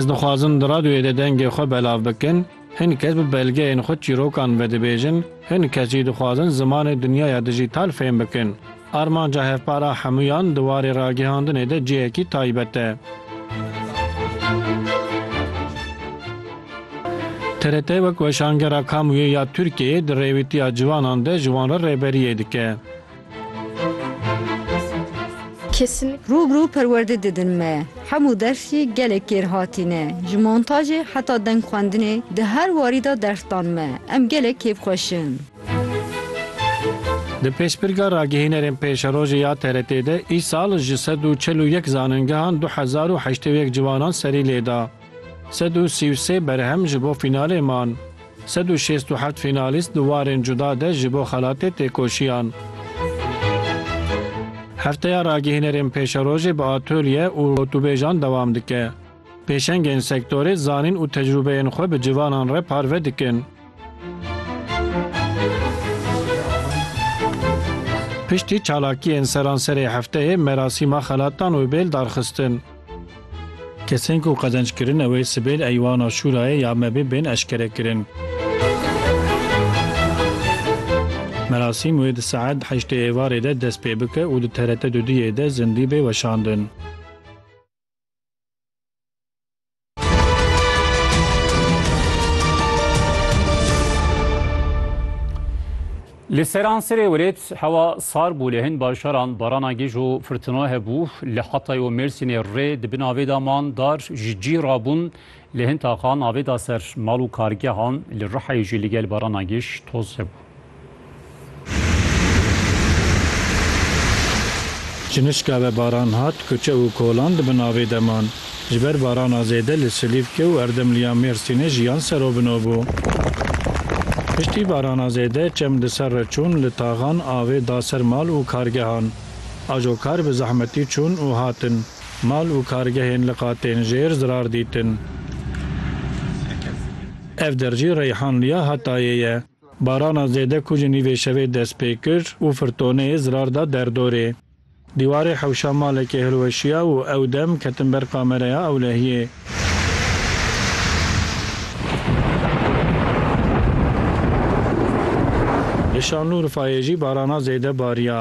Ez dixwazim di radyoyê de dengê xwe belav bikin, hin kes bi belgeyên xwe çîrokan vedibêjin, hin kes jî dixwazin zimanê dinyaya dijîtal fêm bikin. Armanca hevpara hemûyan di warê ragihandinê de cihekî taybet e. TRT wek weşangera Kamuyê ya Tirkiyeyê di rêwîtiya ciwanan de ji wan re rêberiyê dike. Rûbirû perwerdê didin me. Hemû dersî gelek kêr hatîne. Ji montajê heta deng xwendinê di her warî de ders dan me. Em gelek kêfxweşin. Di Pêşbirga Ragihînerên Pêşerojê ya TRT'ê de îsal ji sed û çil û yek zanîngehan du hezar û heştê û yek ciwanan serî lêda. Sed û sî û sê berhem ji bo fînalê man. Sed û şêst û heft fînalîst di warên cuda de ji bo xelatê tê koşiyan. Hefteya Ragihînerên Pêşerojê bi atolye û gotûbêjan dewam dike. Pêşengên sektorê zanîn û tecrûbeyên xwe bi civanan re parve dikin. Piştî çalakiyên seranserê hefteyê merasîma xelatan wê bêl darxistin. Kesên ku qezenc kirin ew ê sibê li Eywana Şûrayê ya MEB'ê bên eşkerekirin. Merasîm wê di saet heştê êvarê de dest pê bike û di TRT dudiyê de zindî bê weşandin. Li seransirê welêt hewa sar bû lê hin bajaran barana gej û firtina hebû. Li Hatay û Mêrsînê rê di bin avê de man dar ji cî rabûn. Li hin taxan avê da ser mal û kargehan. Li Rihayê jî li gel barana gej toz hebû. Ji nişka ve baran hat, kuçe û kolan di bin avê de man. Ji ber barana zêde li Silîfke û erdemliya Mêrsînê jiyan serobino bû. Piştî barana zêde çem li ser re çûn, li taxan avê da ser mal û kargehan. Ajo kar bi zehmetî çûn û hatin. Mal û kargehên li qatên jêr zirar dîtin. Ev der jî Reyhanliya Hatayê ye. Barana zêde ku ji nîvê şevê dest pê kir û firtoneyê zirar da derdorê. Dîwarê hewşa malekê hilweşiya û ew dem ketin ber kamereya ewlehiyê. Li Şanlûrfayê jî barana zêde bariya.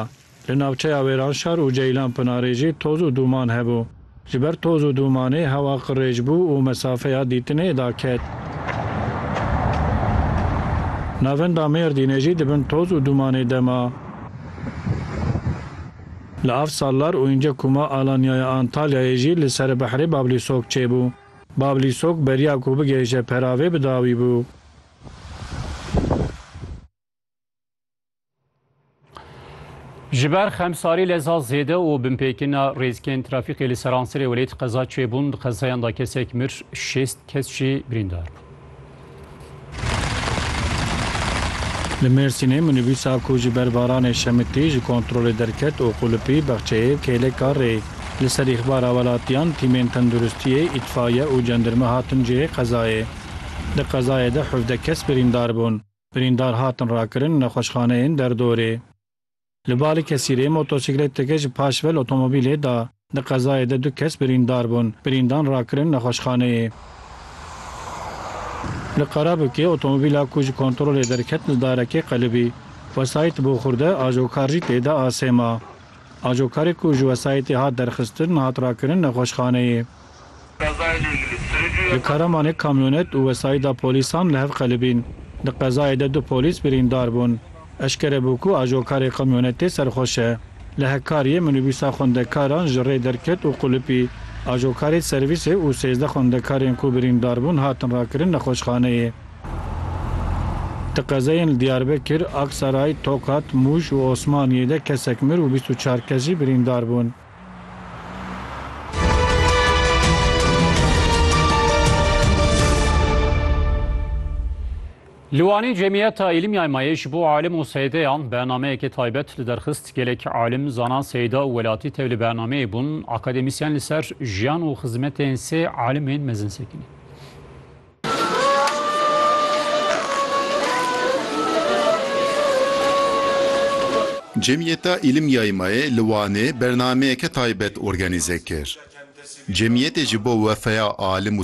Li navçeya Wêranşar û Ceylanpinarê jî toz û dûman hebû. Ji ber toz û dûmanê hewa qirêj bû û mesafeya dîtinê daket. Navenda Mêrdînê jî di bin toz û dûmanê de ma. Li Afsallar û înce ku ma Alanyaya Antalyayê jî li Seribehirê Bablîsok çêbû. Bablîsok beriya ku bigihêje peravê bi dawî bû. Ji ber xemsarî leza zêde û binpêkina rêzkên trafîkê li Seransirê welêt qeza çêbûn. Di qezayan de kesek mir, şêst kes jî birîndar bûn. Li Mêrsînê minîbûsa ku ji ber baranê şemitî ji kontrolê derket û qulipî bexçeyê kêleka rê. Li ser îxbara welatiyan tîmên tenduristiyê, îtfaiye û cendirme hatin cihê qezayê. Di qezayê de hevdeh kes birîndar bûn. Birîndar hatin rakirin nexweşxaneyên derdorê. Li Balikesirê motosîkleteke ji paşvel otomobîlê da. Di qezayê de du kes birîndar bûn, birîndan rakirin nexweşxaneyê. Li Karabûkê otomobîla ku ji kontrolê derket li darekê qelibî. Wesayît bo xurde ajokar jî tê de asê ma. Ajokarê ku ji wesayîtê hat derxistin hat rakirin nexweşxaneyê. Li Karamanê kamyonet û wesayîda polîsan li hev qelibîn. Di qezayê de du polîs birîndar bûn. Eşkere bû ku ajokarê kamyonetê serxweş e. Li Hekkariyê minîbûsa xwendekaran ji rê derket û qulipî. Ajokarê servîsê û sêzdeh xwendekarên ku birîndar bûn hatin rakirin nexweşxaneyê. Di qezayên li Diyarbekir, Aksaray, Tokat, Mûş û Osmaniyê de kesek mir û bîst û çar kes jî birîndar bûn. Li Wanê Cemiyeta Îlimyaymayê ji bo alim û seydeyan bernameyekê taybet li derxist. Gelek alim, zanan, seyda û welatî tev li bernameyê bûn. Akademîsyen li ser jiyan û xizmetên sê alimên mezin sekiniye. Cemiyeta Îlim Yaymayê li Wanê bernameyeke taybet organîze kir. Cemiyetê ji bo wefeya alim û